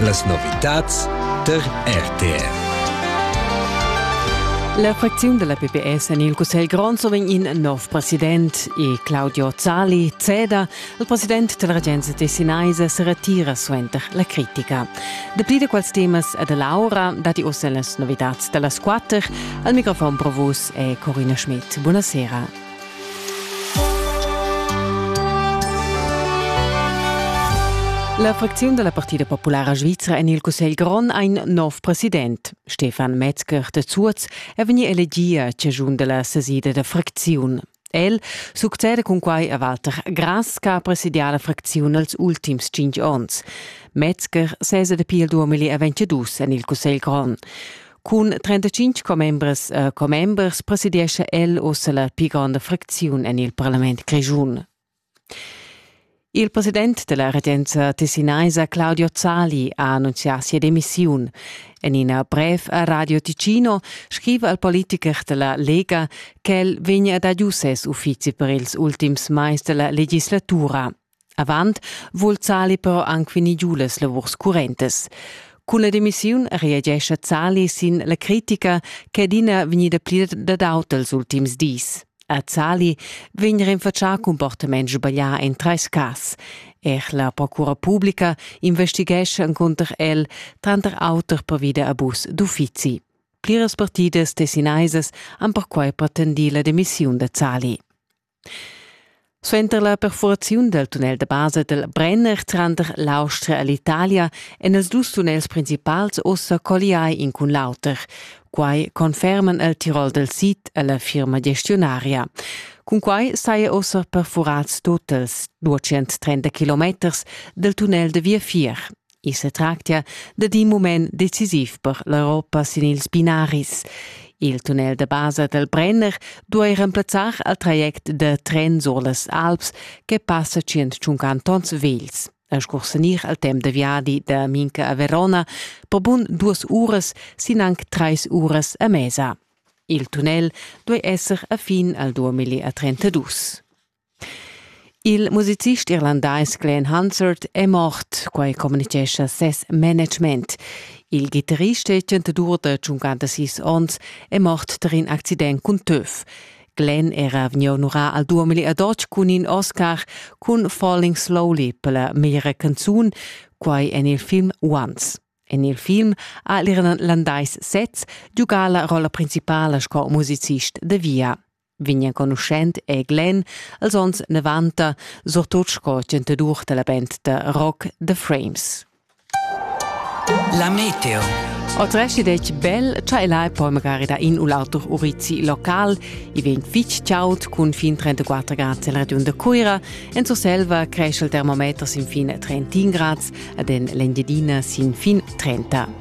Las novitads tar RTR. La fracziun della PPS en il Cussegl Grond soven in nov president e Claudio Zali ceda. Il president della regenza tessinaisa se retira suenter la critica. Dapli di quals temas e dell'aura dati ossa las novitads dellas quatter. Al microfon pro vus è Corina Schmidt. Buonasera. La fracziun da la Partida populara svizra en il Cussegl grond ha in nov president. Stefan Metzger de Zuoz è vegnì elegì a ciagiun da la sesida da fracziun. El succede cun quai a Walter Grass che ha presidià la fracziun els ultims cinq onns. Metzger sesa dapi il 2022 en il Cussegl grond. Cun 35 commembres e commembers presidiescha el ussa la pli gronda fracziun en il parlament grischun. Il president della regenza tessinaisa Claudio Zali ha annunzià sia demissiun. En ina brev a Radio Ticino scriva il politiker della Lega che el vegna ad adiuer ses uffizi per ils ultims mais della legislatura. Avant vul Zali però anc vegnir giu las lavurs currentas. Cun la demissiun reagescha Zali sin la critica che adina vegnida pli dad aut els ultims dis. A Zali vegn rinfatschà comportament sbaglià en trais cas. Er la procura publica investighescha encunter el, tranter auter pervi da abus d'uffizi. Pliras partidas tessinaisas han perquai pretendì la demissiun da Zali. Suenter la perfuraziun dal tunnel da basa dal Brenner tranter l'Austria e l'Italia èn ils dus tunnels principals ussa colliai in cun l'auter. Quai conferman el Tirol dal sid e la firma gestionaria. Cunquai saja ussa perfurads tut els 230 kilometers dal tunnel da viafier. I sa tractia dad in mument decisiv per l'Europa sin ils binaris. Il tunnel da basa dal Brenner duai remplazzar il traject da tren sur las Alps che passa 150 tons vels. A scursanir al temp da viadi da Minca a Verona per bun duas uras sin anc trais uras a mesa. Il tunnel duai esser a fin al 2032. Il musicist irlandais Glenn Hansard è mort, quai communitgescha ses management. Il ghitarrist e chantadur da 56 onns è mort tar in accident cun töf. Glenn era vegni onurà al duamili ad otg cun in Oscar cun Falling Slowly per la meglra canzun, quai en il film Once. En il film ha l'Irlandais sez giugà la rolla principala sco musicist da via. vegn enconuschent è Glenn als onns 90, surtut sco chantadur dalla band da rock The Frames. La Meteo Otresci dec bel, cha el hai poi magari da in u l'altro urizi local, i vegn fitg ciaut cun fin 34 grad nel regiun de Cuira, en Surselva cresce il termometer sin fin 31 grads ad en l'Engiadina sin fin 30